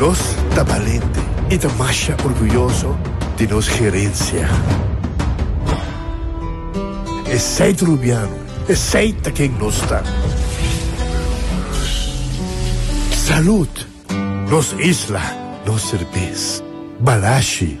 Nos ta balente i ta masha orguyoso di nos gerensia. Esei ta Rubiano, esei ta ken nos ta. Salud! Nos isla, nos serbes. Balashi!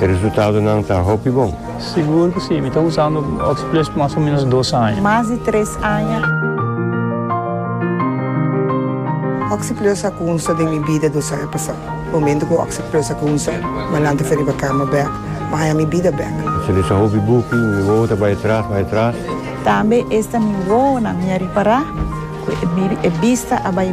E resultadonan ta hopi bon. Sigur cu si. Mi ta usando Oxyplus mas o menos dos aña. Mas di tres aña. Oxyplus a cunsa den mi bida dos aña pasa. Momento cu Oxyplus a cunsa, Malante fue riba cama bek, ma haña mi bida bek. Mi sali sa hopi buki, mi wowo ta bay atras, bay atras. Tambe esta mi wowonan mi a ripara cu e bista a bay.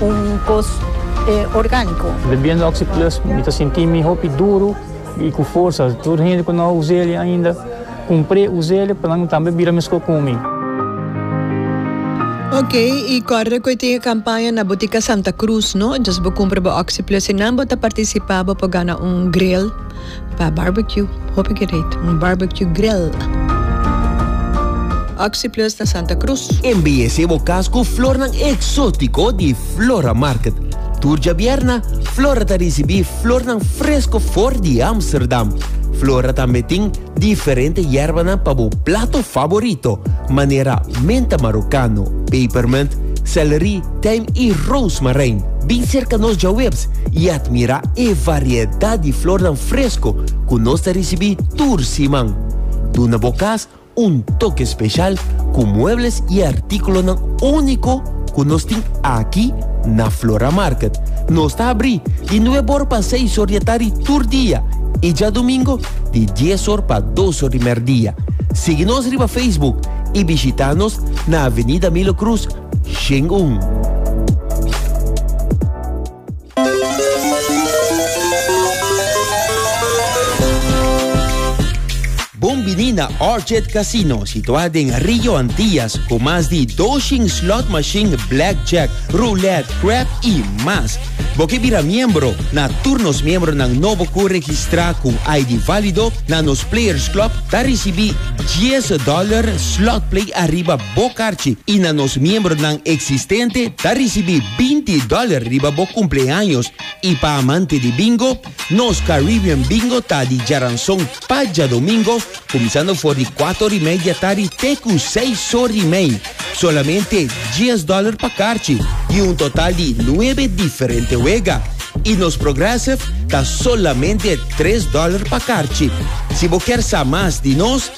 un kos orgániko. Bebiendo Oxi Plus mi ta sinti mi hopi duru i ku forsa. Tur hende ku no a us'é li ainda, kumpr'é, us'é pa nan tambe bira meskos ku mi. Ok, i kòrda ku e tin e kampaña na Botika Santa Cruz, no? Djis bo kumpra bo Oxi Plus i nan bo ta partisipá, bo por gana un gril. Pa barbecue, hopi gereed, un barbecue grill. Oxyplus na Santa Cruz. Embeyesé bo cas cu flornan exótico di Flora Market. Tur djabierna, Flora ta ricibi flornan fresco for di Amsterdam. Flora tambe tin diferente yerbanan pa bo plato favorito, manera menta marocano, pepermint, celery, Tijm i Roosmarijn bin serka nos djaweps i atmirá e variedat di flornan fresko ku nos ta risibí tur siman. Duna bo kas un toke speshal ku muebles i artíkulonan úniko ku nos tin aki na Flora Market. Nos ta abrí di nueb or pa seis or di atardi tur dia i djadumingo di dies or pa dos or di merdia. Sigui nos riba Facebook i bishitá nos na Avenida Milo Cruz Shen Bon bini na Orchid Casino, situá den Rio Antillas, ku mas di 200 slot machine, blackjack, roulette, crap i mas. Bo ke bira miembro na tur nos miembronan nobo ku registrá ku ID válido na nos Players Club ta risibí 10 dòler slot play ariba Bo karchi i na nos miembronan eksistente ta risibí binti dòler riba bo kumpleaños i pa amante di bingo, nos Caribbean Bingo ta di djaranson pa djadomingo kuminsando for di kuater ora i media tardi te ku seis ora i mei. Solamente dies dòler pa karchi i un total di nuebe diferente wega. I nos Progressive ta solamente tres dòler pa karchi. Si bo kier sa mas di nos.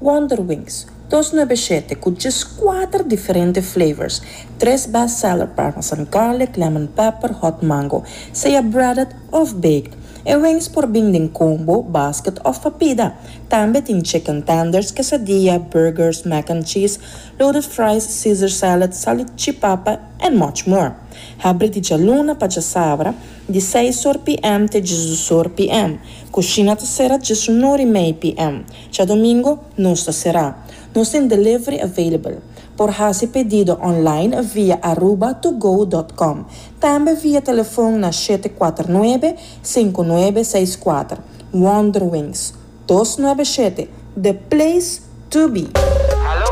Wonder Wings, dos nuebe shete ku djes kuater diferente flavors, tres best seller parmesan garlic, lemon pepper, hot mango, sea breaded òf baked. E wings por bin den combo, basket òf pa pida. Tambe tin chicken tenders, quesadilla, burgers, mac and cheese, loaded fries, caesar salad, salchichipapa and much more. Habri di djaluna pa djasabra. Di seis or PM te dje dus or PM. Kushina ta sera dje su nor i mei PM. Dja domingo nos ta sera. Nos tin delivery available. Por hasi pedido online via Aruba to go dot com. Tambe via telefon na shete kuater nuebe, sinku nuebe seis kuater. Wonderwings. Dos nuebe shete. The place to be!